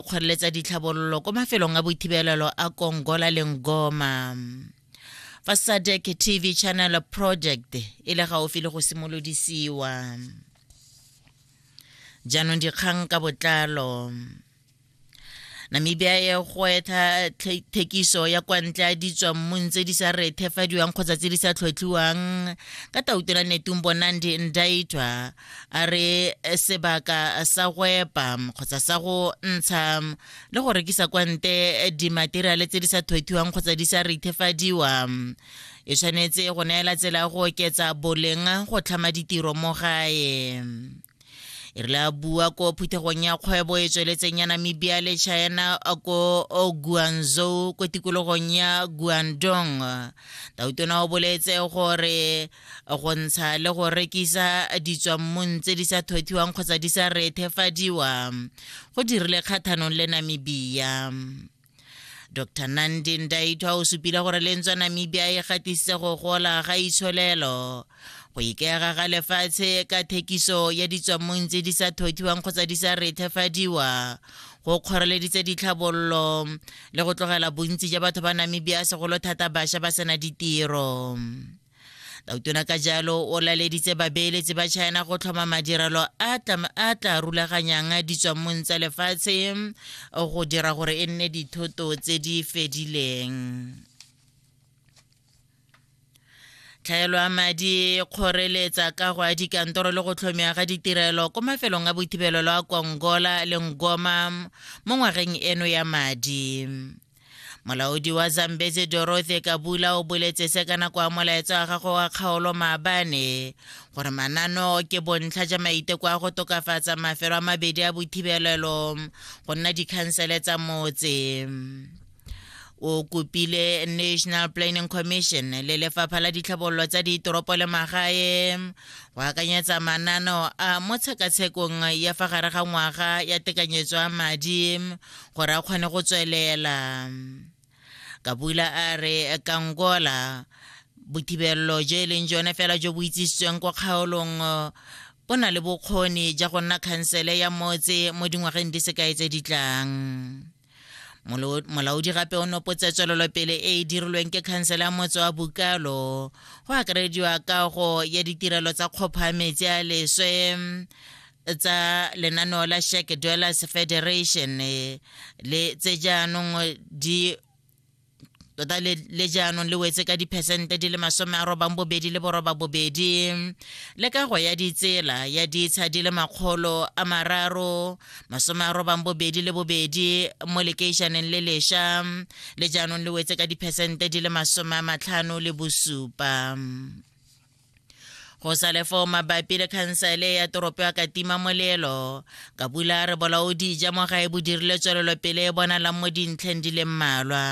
o kgoreletsa ditlhabololo ko mafelong a boithibelelo a kongola le ngoma fa sadec tv channel project e le gaufi le go simolodisiwa jaanong dikgang ka botlalo namibia e goetha thekiso ya kwa ntle ya ditswammung tse di sa rethefadiwang kgotsa tse di sa tlhotlhiwang ka tautola netumbo nandi ndaitwa a re eh, sebaka sa go epa kgotsa sa go ntsha le go rekisa kwa nte eh, dimateriale tse di sa thwethiwang kgotsa di sa rithefadiwa e tshwanetse go neela tsela go oketsa boleng go tlhama ditiro mo gae e re la bua ko phuthegong ya kgwebo e tsweletseng ya namibia le china ko guanzou ko tikologong ya guandong tautona o boletse gore go ntsha le go rekisa ditswammung tse di sa thothiwang kgotsa di sa rethefadiwa go dirile kgathanong le namibia dr nandi ndaitwa o supile gore le ntswa namibia e gatise go gola ga itsholelo go ikega ga lefatshe ka thekiso ya ditswammong tse di sa thothiwang kgotsa di sa rethefadiwa go kgoreleditse ditlhabololo le go tlogela bontsi ja batho ba namibia segolo thata bašwa ba sena ditiro Tautona ka jalo o laleditse babeeletsi ba China go tlhoma madirelo a tla rulaganyang ditswammong tsa lefatshe go dira gore e nne dithoto tse di fedileng. tlhaelo ya madi kgoreletsa ka go a dikantoro le go tlhomiwa ga ditirelo ko mafelong a boithibelelo a kongola le ngoma mo ngwageng eno ya madi molaodi wa zambezi dorothy kabula o boletse se ka nako ya molaetsa wa gagwe wa kgaolo maabane gore manano ke bontlha ja maiteko a go tokafatsa mafelo a mabedi a bothibelelo go nna dikhansele tsa motse o kopile national planning commission le lefapha la ditlhabololo tsa ditoropo le magae go akanyetsa manano a mo tshekatshekong ya fa gare ga ngwaga ya tekanyetso ya madi gore a kgone go tswelela kabula a re kangola bothibelelo jo e leng jone fela jo bo itsisitsweng kwa kgaolong bo na le bokgoni ja go nna khansele ya motse mo dingwageng di sekae tse di tlang molaodi gape o nopotse tswelelopele e e dirilweng ke khansele ya motse wa bukalo go akarediwa kago ya ditirelo tsa kgopha metsi a leswe tsa lenaneo la Shack Dwellers Federation eh, le tse jaanong eh, di tota le, le jaanong le wetse ka diphesente di le masome a robang bobedi le boroba bobedi le kago ya ditsela ya ditsha di le makgolo a mararo masome a robang bobedi le bobedi mo lekeišaneng le lesha le jaanong le wetse ka diphesente di le masome a matlhano le bosupa go sa le foo mabapi le khansele ya toropo ya katima molelo ka bula re bolaodi ja mo gae bo dirile tswelelopele e bonalang mo dintlheng di le mmalwa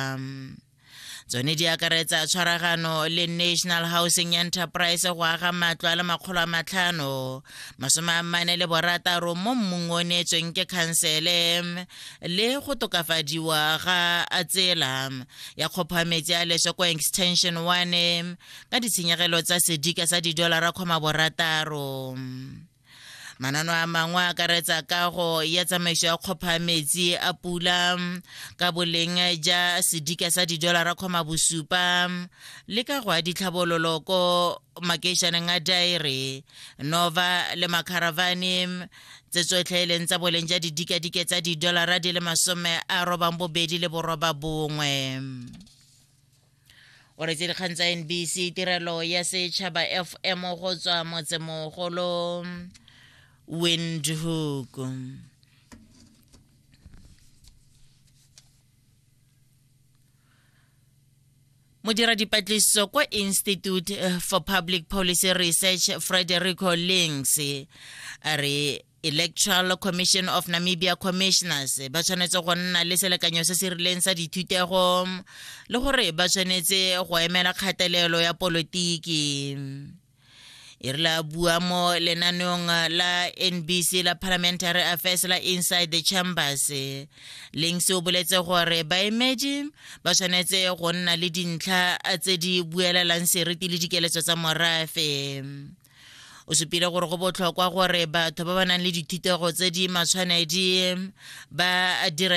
tsone di akaretsa tshwaragano le national housing enterprise go aga matlo a le makgolo a matlhano masome a mane le borataro mo mmung o neetsweng ke khansele le go tokafadiwa ga a tsela ya kgophametsi a leswe ko extension one ka ditshenyegelo tsa sedika sa didolara kgoma borataro manano a mangwe a akaretsa kago ya tsamaiso ya kgopha metsi a pula ka boleng ja sedika sa didolara kgoma bosupa le ka go ya ditlhabololo ko makeišaneng a daere nova le macaravane tse tsotlhe e leng tsa boleng ja didikadike tsa didolara di le masome a robang bobedi le boroba bongwe o retse dikgang tsa nbc tirelo ya setšhaba fm go tswa motsemogolo windhoek modira dipatlisiso kwa institute eh, for public policy research frederico links a re Electoral Commission of Namibia Commissioners ba tshwanetse go nna le selekanyo se se rileng sa dithutego le gore ba tshwanetse go emela kgatelelo ya polotiki e re la bua mo lenaneong la nbc la parliamentary affairs la inside the chambers leng se o boletse gore baemedi ba tshwanetse go nna le dintlha tse di buelelang seriti le dikeletso tsa morafe o supile gore go botlhokwa gore batho ba ba nang le dithutego tse di matshwanedi ba direle